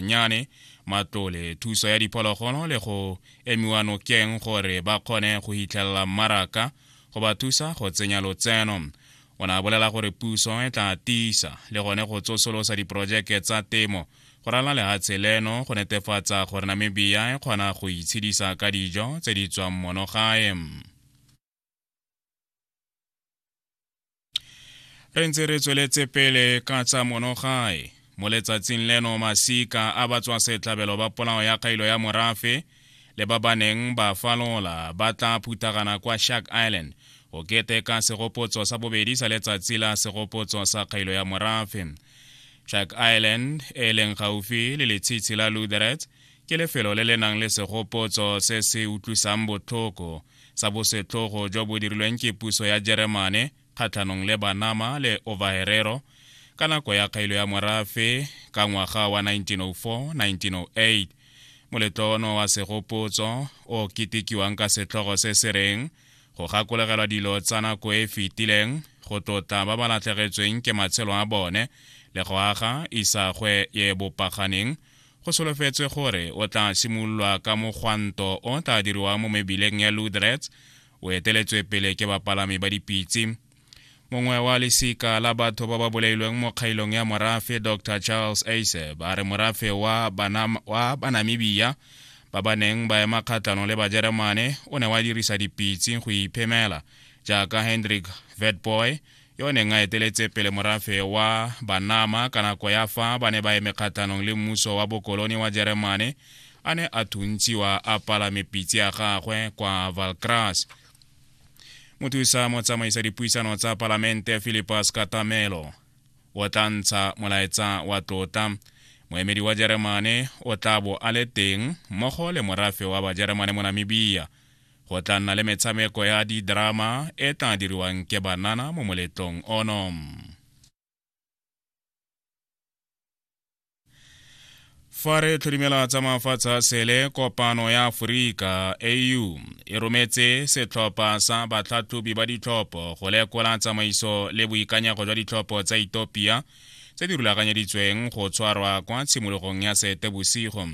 nyane matlole thuso ya diphologolo le go emiwa nokeng gore ba kgone go hitlhelela mmaraka go ba thusa go tsenya lotseno o ne a bolela gore puso e tla tiisa le gone go tsosolosa diporojeke tsa temo go rala lehatshe leno go netefatsa gore namibia e kgona go itshedisa ka dijo tse di tswang monogae re ntse re tsweletse pele ka tsa monogae mo letsatsing leno masika a batswa setlhabelo ba polao ya kgailo ya morafe le ba ba neng ba falola ba tla phuthagana kwa shark island go keteka segopotso sa bobedi sa letsatsi la segopotso sa kgailo ya morafe shark island e leng gaufi le letshitshi la lutheret ke lefelo le le nang le segopotso se se utlwisang botlhoko sa bosetlogo jo bo dirilweng ke puso ya jeremane kgatlhanong le banama le overherero ka nako ya kgailo ya morafe ka ngwaga wa 1904-1908 moletlo ono wa segopotso o ketekiwang ka setlhogo se se reng go gakologelwa dilo tsa nako e fetileng go tlotla ba ba latlhegetsweng ke matshelo a bone le go aga isagwe ye bopaganeng Go solofetswe gore o tla simololwa ka mogwanto o tla diriwang mo mebileng ya Loudrets, o eteletswe pele ke bapalami ba dipitse. Mongwe wa lesika la batho ba ba bolailweng mo kgailong ya morafe, Dr Charles Eiseb, a re morafe wa, Banam, wa Banamibia ba ba neng ba ema kgatlhanong le Bajeremane o ne wa dirisa dipitse go iphemela, jaaka Hendrik Witbooi, yo o neng a eteletse pele morafe wa banama ka nako ya fa ba ne ba eme kgatlhanong le mmuso wa bokolone wa jeremane a ne a thuntshiwa a palame pitse ya gagwe kwa valcras mothusa motsamaisa dipuisano tsa palamente philipus katamelo o tla ntsha molaetsa wa tlotla moemedi wa jeremane o tla bo a le teng mmogo le morafe wa bajeremane mo namibia Go tla nna le metshameko ya didrama e tla diriwang ke banana mo moletlong ono. Fa re tlhodimela tsa mafatshe a sele kopano ya Aforika AU e rometse setlhopha sa batlhatlhobi ba ditlhopho go lekola tsamaiso le boikanyego jwa ditlhopho tsa Ethiopia tse di rulaganyeditsweng go tshwarwa kwa tshimologong ya seetebosigo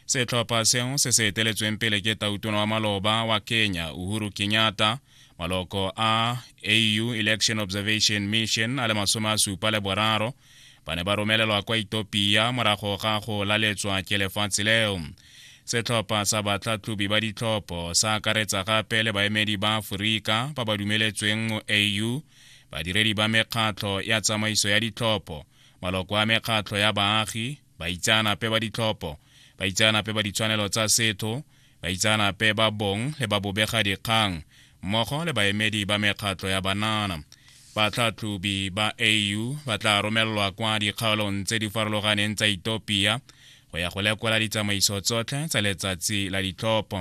setlhopha seo se se eteletsweng pele ke tautona wa maloba wa kenya uhuru kenyatta maloko a au election observation mission a le masome a supa le boraro ba ne ba romelelwa kwa etopia morago ga go laletswa ke lefatshe leo setlhopha sa batlhatlhobi ba ditlhopho sa akaretsa gape le baemedi ba aforika ba ba dumeletsweng mo au badiredi ba mekgatlho ya tsamaiso ya ditlhopho maloko a mekgatlho ya baagi baitseanape ba ditlhopho baitseanape ba ditshwanelo tsa setho baitseanape ba bong le ba bobega dikgang mmogo le baemedi ba mekgatlho ya banana batlhatlhobi ba au ba tla romelelwa kwa dikgaolong tse di farologaneng tsa etopia go ya go lekola ditsamaiso tsotlhe tsa letsatsi la ditlhopho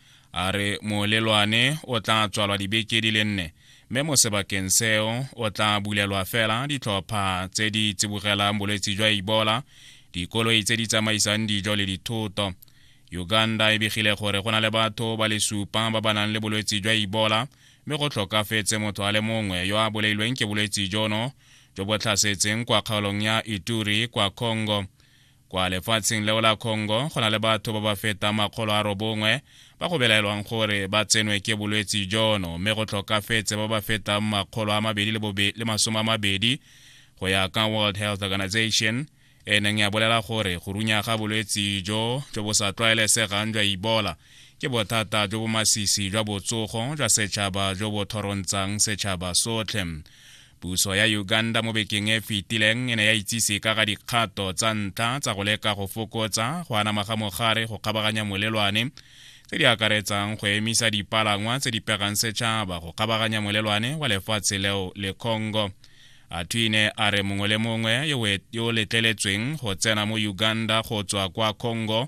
a re molelwane o tla tswalwa dibeke di le nne mme mo sebakeng seo o tla bulelwa fela ditlhopha tse di tsibogelang bolwetse jwa ebola dikoloi tse di tsamaisang dijo le dithoto uganda e begile gore go na le batho ba le supa ba ba nang le bolwetse jwa ebola mme go tlhokafetse motho a le mongwe yo a bolailweng ke bolwetse jono jo bo tlhasetseng kwa kgaolong ya ituri kwa congo Kwa lefatsheng leo la Congo go na le batho ba ba fetang makgolo a robongwe ba go belaelwang gore ba tsenwe ke bolwetse jono mme go tlhokafetse ba ba fetang makgolo a mabedi le masome a mabedi go ya ka World Health Organization e neng ya bolela gore go runya ga bolwetse jo jo bo sa tlwaelesegang jwa Ebola ke bothata jo bo masisi jwa botsogo jwa setšhaba jo bo thorontsang setšhaba sotlhe Puso ya Uganda mo bekeng e fetileng e ne ya itsise ka ga dikgato tsa ntlha tsa go leka go fokotsa go anama ga mogare go kgabaganya molelwane tse di akaretsang go emisa dipalangwa tse di pegang setšhaba go kgabaganya molelwane wa lefatshe leo le congo atwine a re mongwe le mongwe yo o letleletsweng go tsena mo uganda go tswa kwa congo